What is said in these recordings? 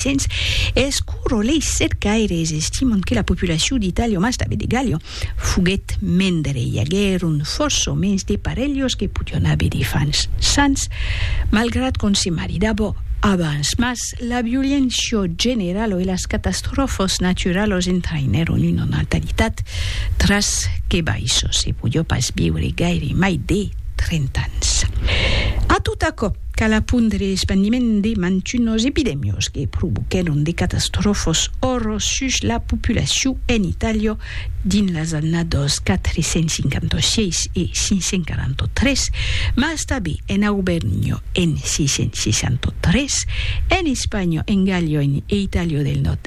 Sens escuro, lei cercaires estiman que la populacion d'Italia, mas tanben de Gallia, foguèt mendre, i aguèron fòrça o mens de parelhos que podián aver de fans sans, malgrat qu'ont se maridava abans. Mas la violéncia generala e las catastròfas naturalas entraïnèron una natalitat tras que baixa se podiá pas viure gaire mai de 30 ans. A tot aquò, Cal apondre eth patiment de mantunos epidèmios que provoquèron de catastròfos òros sus la populacion en Itàlia dins las annadas 456 e 543, mas tanben en Aubèrnia en 663, en Espanha, en Gàllia e en Itàlia del Nòrd.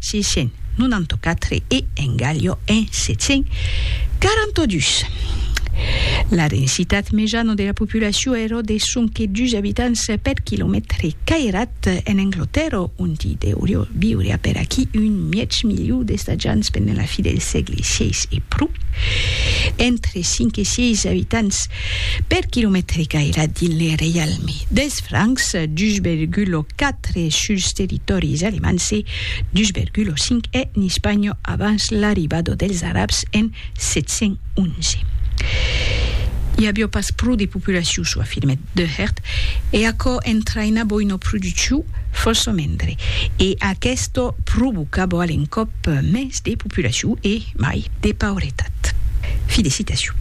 694 e en Gallio en 742. La densitat mejana de la populacion èra de sonque dus abitants per quilomètre cairat en Anglotèrra, onti deuriá viure per aquí un mièg miliu d'estatjants pendent la fi del sègle xvi e pro, entre cinc e sièis abitants per quilomètre cairat dins le reialme dels Francs, 2,4 4 suls territòris alemands se dusbergulo 5 e n'Ispanho abans l'arribado dels arabs en 711. I avió pas pro de populaciu sua, afirmèt de Hert, e aquò entraïnabo una producciu fòrça mendre, e aquesto provocabo a l'encòp mès de populaciu e mai de pauretat. Fi de citaciu.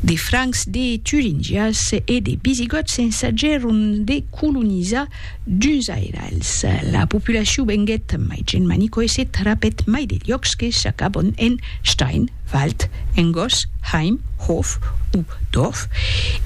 De Francs, de Turingias e de Visigòts ensajèron de colonizar d'uns a er als. La populacion venguèt mai genmanico e se trapèt mai de liòcs que s'acabon en Stein, Wald, Engos, Heim, Hof o Dorf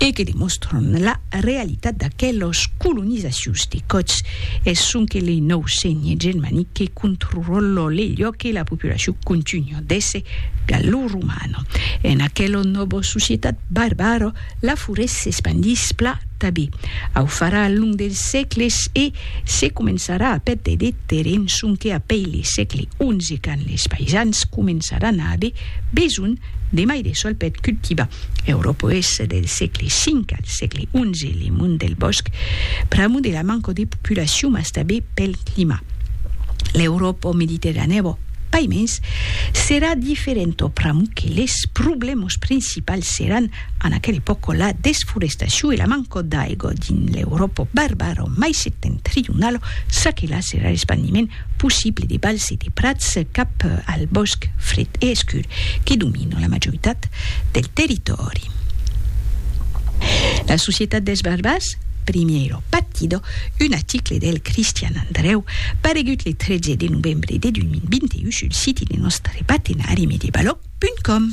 e que demòstran la realitat d'aquelos colonizacions de còts. Es sonque le nòu sègne genmanic que contrròla le liòc e la populacion contunha d'èsser galloromana en aquela nòva societat barbara La forest s'espandís pla tabé. Au farà al long dels sègles e se començarà a pèrdre de terren sonque apèi le sègle XI quand les païsans començaràn a aver besonh de mai de sòl per cultivar. Euròpo es del sègle V al sègle XI le mond del bòsc pr'amor de la manca de populacion mas tabé pel clima. L'Euròpo mediterranèbo, paimens, serà diferenta pr'amor que les problèmas principals seràn En aquel epòca la desforestacion e la manca d'aiga dins l'Euròpa barbara o mai septentrionala s'aquelàs era l'espandiment possible de vals e de prats cap al bòsc fred e escur que domina la majoritat del territòri. La societat dels barbars, primièra patida, un aticle del Cristian Andrèu, paregut le 13 de novembre de 2021 sul siti de nòstre patenari medievalòg.com.